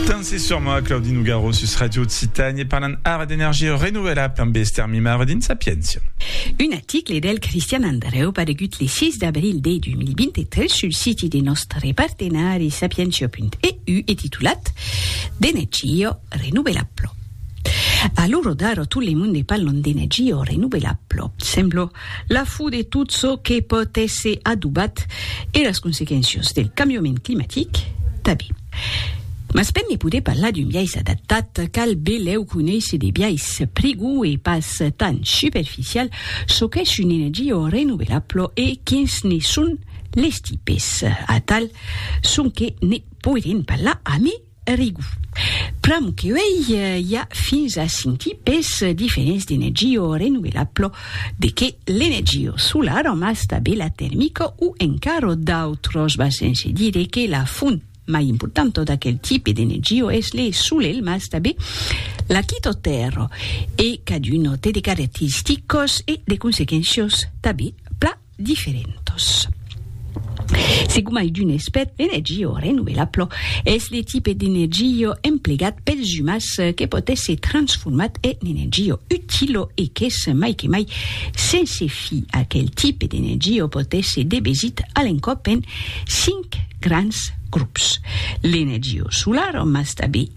Tant se soma Claudi Nougaro sus Ràdio Occitània e parlan ara d'energia renovelabla amb Esther Mimaro dins Sapiéncia. Un article del Cristian Andreu paregut le 6 d'abril de 2023 sul siti de nòstre partenari sapientia.eu e titulat D'energia renovelabla. A l'ora d'ara tot le monde parlan d'energia renovelabla. Sembla La fo de tot çò que pòt èsser adobat e las consequéncias del cambiament climatic tanben. Mas per ne poder parlar d'un biais adaptat, cal belèu conéisser de biais prigòu e pas tan superficial çò qu'es una energia renovelabla e quins ne son les tipes. Atal sonque ne poirem parlar amé Rigu. Pr'amor que uèi i a fins a cinc tipes diferents d'energió renovelablo, de qué l'energió solara mas tanben la termica o encara d'autras va sense dire que la font mai importanta d'aquel tipe d'energió es le solelh mas tanben la quita tèrra e caduna té de caracteristicas e de consequéncias tanben pla diferentos. Se gomai d'un espèt d'energia renovelabla, es le tipe d'energia emplegat pels umans que pòt èsser transformat en energia utila e qu'es mai que mai sense fi. Aquel tipe d'energia pòt èsser debesit a l'encòp en cinc grands grops, l'energia solara mas tanben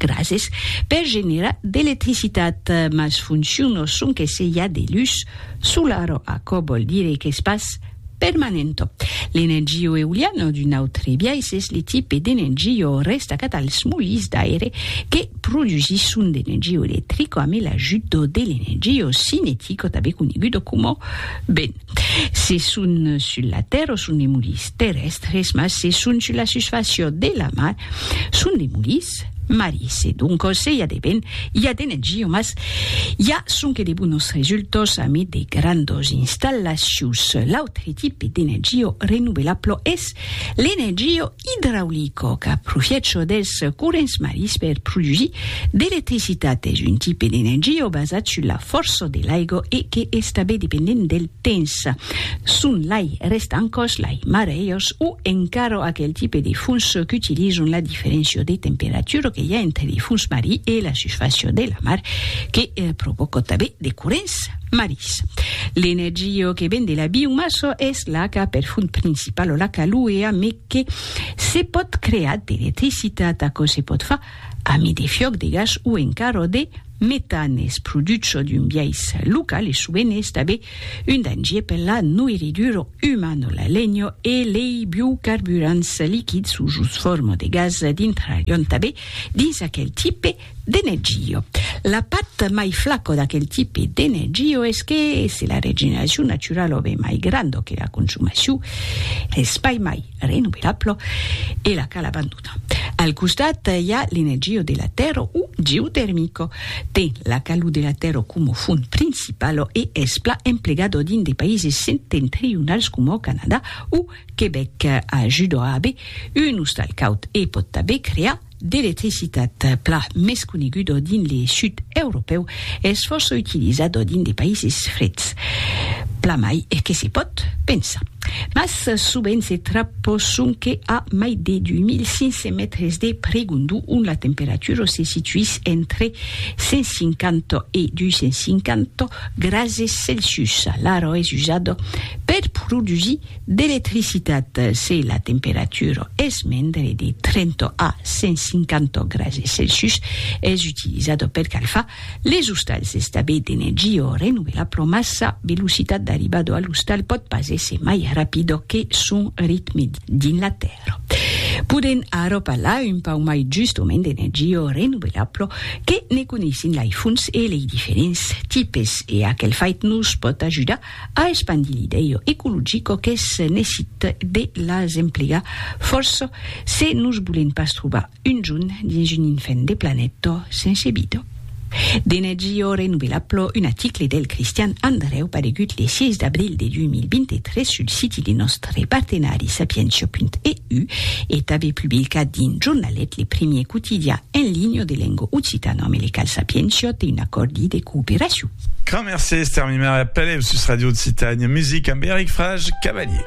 Grases per generar d'electricitat, mas funciono sonque se i a de lus solaro, aquò vòl dire qu'es pas permanento. L'energio euliano d'un autre biais es le tipe d'energio restacat als molins d'aire que produsisson d'energio electrico ame l'ajut de l'energio cinetico tanben conegudo coma vent. Se son sul la tèrra son de mulis terrèstres, mas se son sul la susfàcia de la mar son de mulis marisi. Doncas se i a de ben, i a de negia, mas i a sonque de bonas resultas amid de grandas installacions. L'autre tipe d'energia renovelabla es l'energia Idraulico qu'a profiècho dels corrents marins per produsir d'electricitat es un tipe d'energia basat sus la fòrça de l'aiga e que es tanben dependent del temps. Son lai rèstan còs, lai marejos o encara aquel tipe de fons qu'utilizan la diferéncia de temperatura que i a entre de fons marin e la susfàcia de la mar que provòca tanben de corrents. Marís. L'energia que ven de la biomassa es l'aca per font principala, l'aca luea, me que se pòt crear d'electricitat. Aquò se pòt far amé de fiòc de gas o encara de metan. Es produch çò d'un biais local e sovent es tabé un dangier per la noirridura umana. La lenha e lei biocarburants liquids o jos forma de gas dintrarion tabé dins aquel tipe De Neggio. La part mai flaco d'aquel tipe de Neggio es que se la regeneracion naturala o be mai granda que la consumacion es pas mai renovelabla e la cal abandonar. Al costat i a l'energia de la tèrra o geotermica. Ten la calor de la tèrra coma font principala e es plan emplegada dins de païses septentrionals coma o Canadà o Quebec. Ajuda a aver un ostal caud e pòt tanben crear d'electricitat plan mès conegudo dins le sud europèu es fòrça utilizado dins de païses freds, plan mai que se pòt pensar. Mas sovent se trapò sonque a mai de 2500 mètres de pregondu ont la temperatura se situís entre 150 e 250 grases Celsius. L'aro es usado per produsir D'electricitat se la temperatura es mendre de 30 a 150 grase Celsius, es utilizada per calfar les ostals d'estabè d'energia o renovelar pro mas sa velocitat d'arribada a l'ostal pòt pas èsser mai rapida que son ritme dins la tèrra. Podèm ara parlar un pauc mai justament d'energia renovelabla que ne coneissin lei fonts e lei diferents tipes e aquel fait nos pòt ajudar A espandir l'idèu ecologico qu'es nesit de las emplegar fòrça se nos bolen pas trobar un junh dins un infèn de planèta sense vida. De Nagio renovela plo un aticle del Cristian Andrèu paregut le 6 d'abril de 2023 sul siti de nòstre partenari sapientia.eu e tanbe publicat dins Jornalet, le primier quotidian en linha de lenga occitana, me le cal Sapientia té un acòrdi de cooperacion. Grand mercés, termimar eth pelèu sus Radio Occitània Music amb Eric Frage Cavalier.